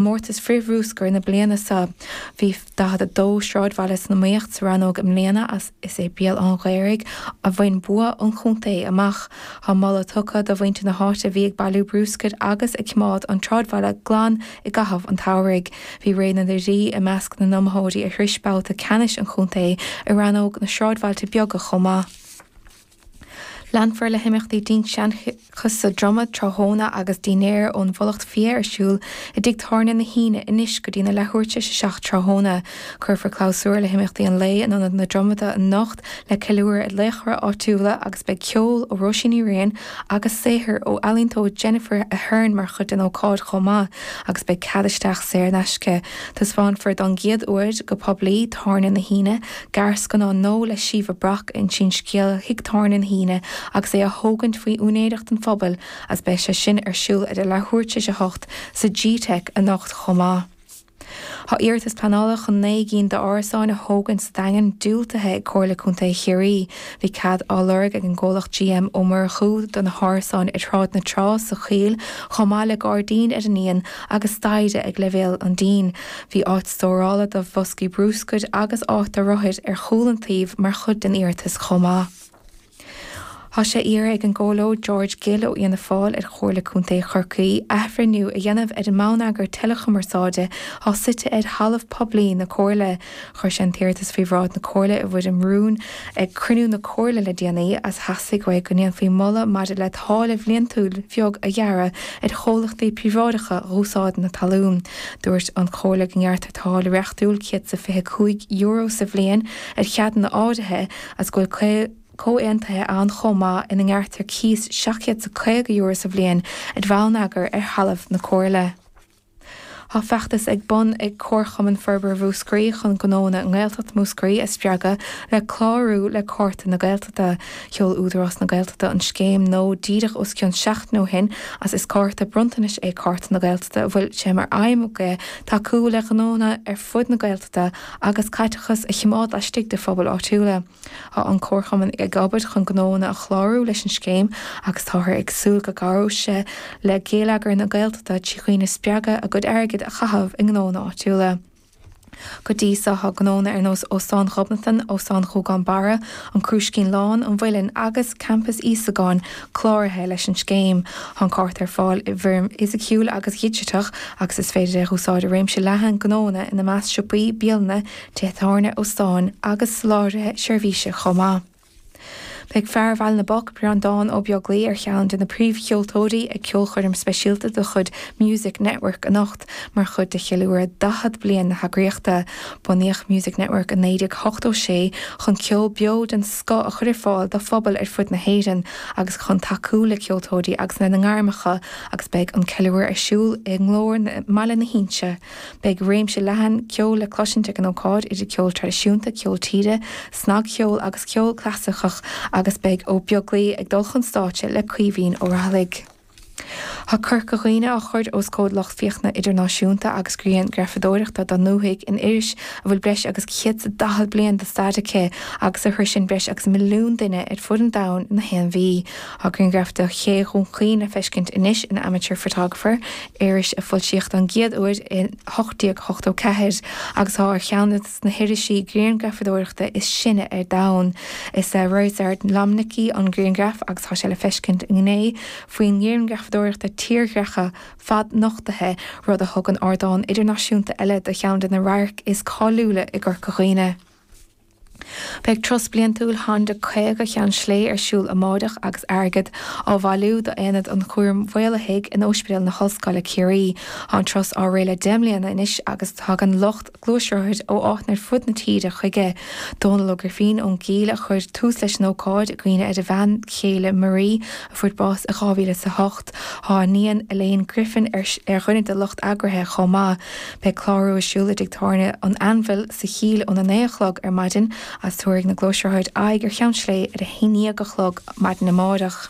gcomórtas frith-bhrúscair na bliana seo. Bhí 42 sráidbhaile san iomaíocht sa rannóg i mbliana agus is é Béal an Ghaorthaidh a bhain bua an chontae amach. Tá moladh tugtha do mhuintir na háite a bhí ag bailiú brúscair agus ag cimeád an tsráidbhaile glan i gcaitheamh an tsamhraidh. Bhí Réidh na nDoirí i measc na n-iomaitheoirí a shrois babhta ceannais an chontae i rannóg na sráidbhailte beaga chomh maith. Leanfar le himeachtaí dinnseanchais sa Dromaid tráthnóna agus dinnéar ón bhFulacht Fia ar siúl i dTigh Tábhairne na hUíne anois go dtí na leathuair tar éis a seacht tráthnóna. Cuirfear clabhsúr le himeachtaí an lae in Ionad na Dromoda anocht le ceiliúradh ar laochra áitiúla agus beidh ceol ó Róisín Ní Riain agus saothar ó ealaíontóir Jennifer Aherne mar chuid den ócáid chomh maith agus beidh cead isteach saor in aisce. Taispeánfar don gcéad uair go poiblí Tábhairne na hUíne gearrscannán nua le Síomha Brock a insíonn scéal Thigh Tábhairne na hUíne agus é á thógaint faoi úinéireacht an phobail agus beidh sé sin ar siúl idir leathuair tar éis a hocht sa G-Teic anocht chomh maith. Tá iarratas pleanála chun naoi gcinn d'árasáin a thógaint sa Daingean diúltaithe ag Comhairle Contae Chiarraí. Bhí cead á lorg ag an gcomhlacht GM Ó Murchú do na hárasáin ar Shráid na Trá sa Choill chomh maith le gairdín ar an ndíon agus staighre ag leibhéal an dín. Bhí áit stórála do bhoscaí brúscair agus áit do rothair ar chúl an tsuímh mar chuid den iarratas chomh maith. Tá sé iarrtha ag an gComhairleoir George Gill ó Fhianna Fáil ar Chomhairle Contae Chorcaí athbhreithniú a dhéanamh ar an mbonneagar teileachumarsáide atá suite ar thalamh poiblí na Comhairle. Chuir sé an t-iarratas faoi bhráid na Comhairle i bhfoirm rúin. Ag cruinniú na Comhairle le déanaí is theastaigh uaidh go ndéanfaí moladh maidir le táille bhliantúil bheag a ghearradh ar chomhlachtaí príobháideacha dh'úsáid na talún. Dúirt an Chomhairle go ngearrtar táille reachtúil €125 sa bhliain ar cheadanna áirithe agus go bhfuil comhaontuithe ann chomh maith ina ngearrtar cíos €750 sa bhliain ar bhonneagar ar thalamh na Comhairle. Tá feachtas ar bun ag Comharchumann Forbartha Mhúscraí chun gnóanna i nGaeltacht Mhúscraí a spreagadh le clárú le Cárta na Gaeltachta. Sheol Údarás na Gaeltachta an scéim nua díreach os cionn seachtain ó shin agus is cárta bronntanais é Cárta na Gaeltachta a bhfuil sé mar aidhm aige tacú le gnóanna ar fud na Gaeltachta agus caiteachas a chimeád laistigh de phobail áitiúla. Tá an Comharchumann ag obair chun gnóanna a chlárú leis an scéim agus táthar ag súil go gcabhróidh sé le Geilleagar na Gaeltachta trí dhaoine a spreagadh a gcuid airgid a chaitheamh i ngnóanna áitiúla. Go dtí so tá gnóanna ar nós Óstán Ghobnatan, Óstán Ghúgán Barra, An Crúiscín Lán, An Mhuilinn agus Campas Íosagáin cláraithe leis an scéim. Tá an cárta ar fáil i bhfoirm fhisiciúil agus dhigiteach agus is féidir é a úsáid i réimse leathan gnóanna, ina measc siopaí, bialanna, tithe tábhairne, óstáin agus soláthraithe seirbhíse chomh maith. Beidh fear Bhaile na bPoc, Breandán Ó Beaglaoich, ar cheann de na príomhcheoltóirí ag ceolchoirm speisialta de chuid Music Network anocht mar chuid de cheiliúradh 40 bliain na heagraíochta. Bunaíodh Music Network i 1986 chun ceol beo den scoth a chur ar fáil do phobail ar fud na hÉireann agus chun tacú le ceoltóirí agus lena ngairmeacha agus beidh an ceiliúradh ar siúl i nGlór i mBaile na hInse Beidh réimse leathan ceoil le cloisint ag an ócáid idir ceol traidisiúnta, ceol tíre, snagcheol agus ceol clasaiceach agus beidh Ó Beaglaoich ag dul chun stáitse le Caoimhín Ó Raghallaigh. Tá Corca Dhuibhne á chur os comhair lucht féachana idirnáisiúnta agus grianghrafadóireacht den ndúthaigh in iris a bhfuil breis agus céad 's a daichead bliain de stair aici agus a shroiseann breis agus milliún duine ar fud an domhain gach aon mhí. Tá grianghraf de Ché Dhún Chaoin le feiscint anois in Amateur Photographer, iris a foilsíodh don gcéad uair in 1884 agus atá ar cheann de na hirisí grianghrafadóireachta is sine ar domhan. Is é Ryszard Lomnicki an grianghraf agus tá sé le feiscint i ngné faoin ngrianghrafadóireacht tírdhreacha fad-nochtaithe, rud a thugann ardán idirnáisiúnta eile do cheann de na radhairc is cáiliúla i gCorca Dhuibhne. Beidh turas bliantúil Honda 50 Cheann Sléibhe ar siúl amáireach agus airgead á bhailiú d'Aonad an Chúraim Mhaolaithigh in Ospidéal na hOllscoile Ciarraí. Tá an turas á rith le deich mbliana anois agus tagann lucht gluaisrothair ó áiteanna ar fud na tíre chuige. Dónal Ó Grifín ón gCill a chuir tús leis an ócáid i gcuimhne ar a bhean chéile Marie a fuair bás i 2008. Tá a iníon Elaine Griffin ar dhuine de lucht eagraithe chomh maith. Beidh clárú ar siúl i dtigh tábhairne an Anvil sa Chill óna naoi a chlog ar maidin agus tabharfaidh na gluaisrothair aghaidh ar Cheann Sléibhe ar a haon déag a chlog maidin amáireach.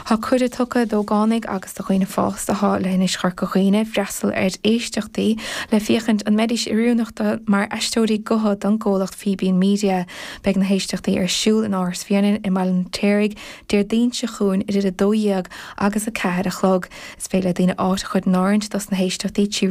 Tá cuireadh tugtha d'ógánaigh agus do dhaoine fásta atá i leithinis Chorca Dhuibhne freastal ar éisteachtaí le féachaint an mbeidís oiriúnach mar aisteoirí gutha don gcomhlacht Fíbín Media. Beidh na héisteachtaí ar siúl in Áras Bhréanainn i mBaile an Fheirtéaraigh Déardaoin seo chugainn idir a dó dhéag agus a ceathair a chlog. Is féidir le daoine áit a chur in áirithint dos na héisteachtaí trí